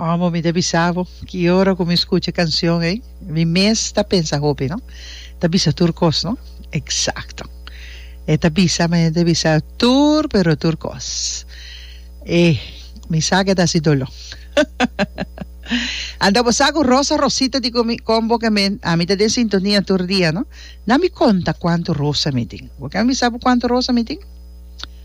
Amo mi ta bisa bo ki ora ku mi skucha e kanshon ei mi mes ta pensa hopi no ta bisa tur kos no eksakto e ta bisa mi ta bisa tur pero tur kos e mi sa ke ta hasi dolo anta bo sa ku Rosa Rosita di kon bo ke mi ami ta den sintonia tur dia no na mi konta kuantu rosa mi tin bo ken bisa bo kuantu rosa mi tin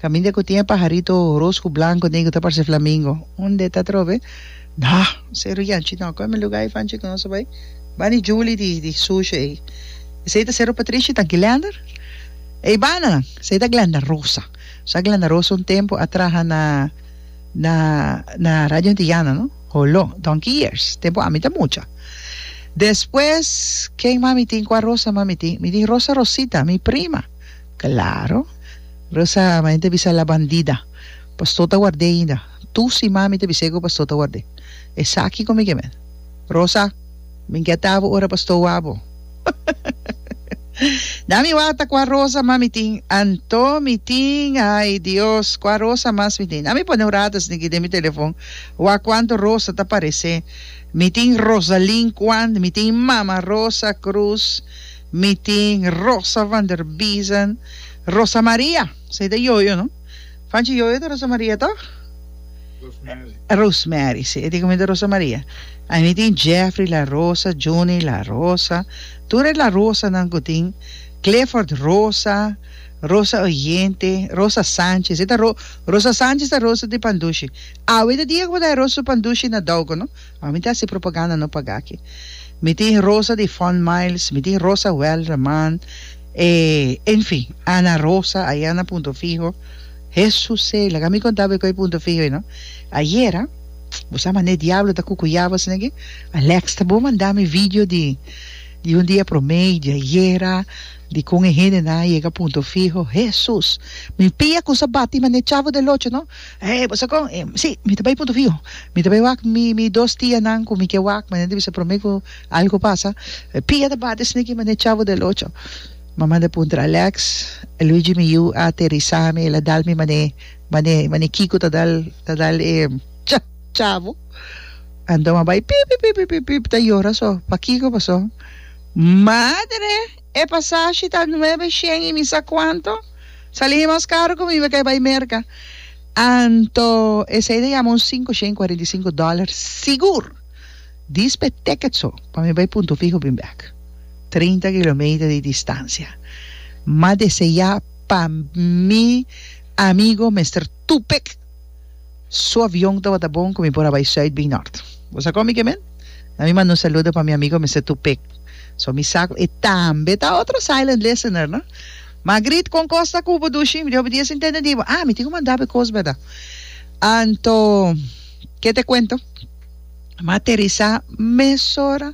Caminda cu tin e pajarito roos cu blanco den cu ta parce flamingo. Un de ta trobe, Nah! Esey ruyanchi no. Coge mi lugar ey fanchi cu nos a bay. Ba di Julie di di sushi ey. Esey ta Cerro Patricia y ta Glender. Ey bana nan. Esey ta Glenda Rosa. Sa Glenda Rosa un tempo a traha na na na Radio Antillana no. Holo. Donkey years. Tempo ami ta mucha. Despues, ken mas mi tin? Cua Rosa mas mi tin? Mi tin Rosa Rosita, mi prima. Claro. Rosa, ma enta bisa la bandida. Pastor ta ward'é ainda. Tu si mami ta bis'é ku pastor ta ward'é. Esaki komo i ke men. Rosa, Min ke atabo ora pastor wak bo. Na mi wak ta kua rosa mas mi tin. Anto mi tin, ai Dios, kua rosa mas mi tin. Na mi pone un rata sniki den mi telefon wak kuantu rosa ta paresé. Mi tin Rosalin Kuan, mi tin Mama Rosa Krus. Mi tin Rosa van der Biesen, Rosa Maria, sa e ta yoyo no? Fanchi yoyo ta Rosa Maria toch? Rosemary. Rosemary, si, e tin kominta Rosa Maria. I mi tin Jeffrey La Rosa, Johnny La Rosa, tur e La Rosanan ku tin, Clifford Rosa, Rosa Oyente, Rosa Sanchez, e ta Ro, Rosa Sanchez ta Rosa di Pandushi. Awe ta dia ku bo ta e Rosa Pandushi na Douko no. A mi ta hasi propaganda no paga aki. Mi tin Rosa di Fond Miles, mi tin Rosa Welderman, e en fin, Ana Rosa aya na Punto Fiho. Hesusey, laga mi konta bo e kue Punto Fiho ei no. Ayera, bo sa mané diablo ta kukuyaba asina aki? Alekster bo manda mi video di di un dia promé di ayera, di kon e hendenan a yega Punto Fiho. Hesus! Mi pia kusa bati mané Chavo del Ocho no. Hey, bo sa con? Hey, si, mi ta bay punto fiho. Mi ta bay wak mi, mi dos tianan cu mi ke wak, mane ta bisa prome cu algo pasa. Pia ta bate esnan aki mane Chavo del Ocho. Mama ta puntra Alex, Luigi mi yu a aterisa mi, el a dal mi mane, mane, mane Kiko ta dal, ta dal e Cha, Chavo. Anto mi a bay pip, pip, pip, pip, pip, pip, ta yora so. Pa Kiko paso? Madre! E pasashi ta nuebe shen y mi sa cuanto. Sali he mas caro cu mi be kai bai merca. Anto esey ta yama un cinco shen y cuarenta y cinco dollar sigur. Dis pe ticket so pa mi bai punto fiho bin bek. Treinta kilometer di distancia. Mas di esey ya pa mi amigo mester tupek. Su avion tabata bon cu mi por a bai zuid bin nort. Bo sa con mi ke men? Na mi manda un saludo pa mi amigo mester Tupek. So mi sa cu e tambe ta otro silent listener, no? Magrit, con cos ta cu bo dushi? Mi di hopi dia sin tende di bo. Ah, mi tin cu manda bo e cos, berdad? Anto, ke te cuento? M'a aterisá mesora,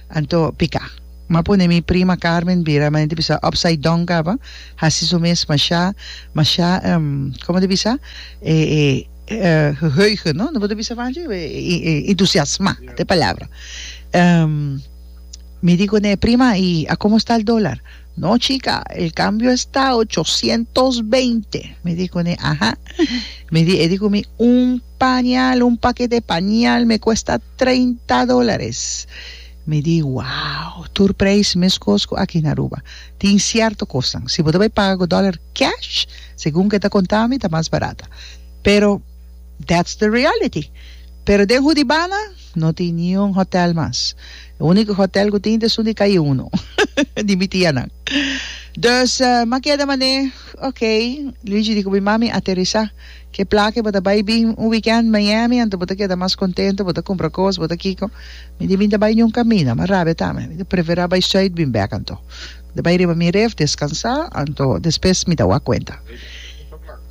anto piká. M'a pone mi prima Carmen bira, m'a hende bisa upside down kaba, hasi su mes mashá, mashá, komo ta bisa? geheugen, no? No bo ta bisa panchi? entusiasmá, ta e palabra. Mi di kuné, prima, i a komo esta el dólar? No chika, el kambio a esta ochocientos beinte. Mi di kuné, aha. Mi di, e di ku mi, un. pañal, un pakete pañal me kuesta treinta dólares. Mi di, Wow! Tur preis meskos ku aki na Aruba. Tin sierto kosnan, si bo ta bai paga ku dòler cash, segun ku e ta konta mi, ta mas barata. Pero, that's the reality. Pero den Hudibana, no tin niun hotèl mas. E úniko hotèl ku tin ta esun di Kaye Uno, di mi tianan. Dus, m'a keda manera, Oké, Luigi di ku mi, Mami, aterisá. Ke pla ke bo ta bai bin un weekend Miami anto bo ta keda mas kontento, bo ta kumpra kos, bo ta kiko. Mi tin bin ta bai niun kamina, mas rabia ta mi. Mi ta preferá bai Zuid bin bèk anto. Mi ta bai riba mi ref, deskansá, anto despes mi ta wak kuenta.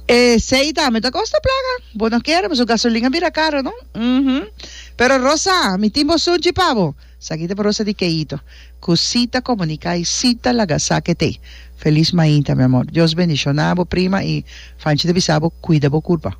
Esei ta mi ta kosta plaka. Bo no kere, mi su gasolin a bira karo, no? Uhumm. Pero Rosa, mi tin bo sunchi pa bo. Sakita Barosa di Keito cu si ta comunica y si ta laga sake te. Feliz mainta mi amor. Dios bendiciona bo prima y Fanchi ta bisa bo cuida bo curpa.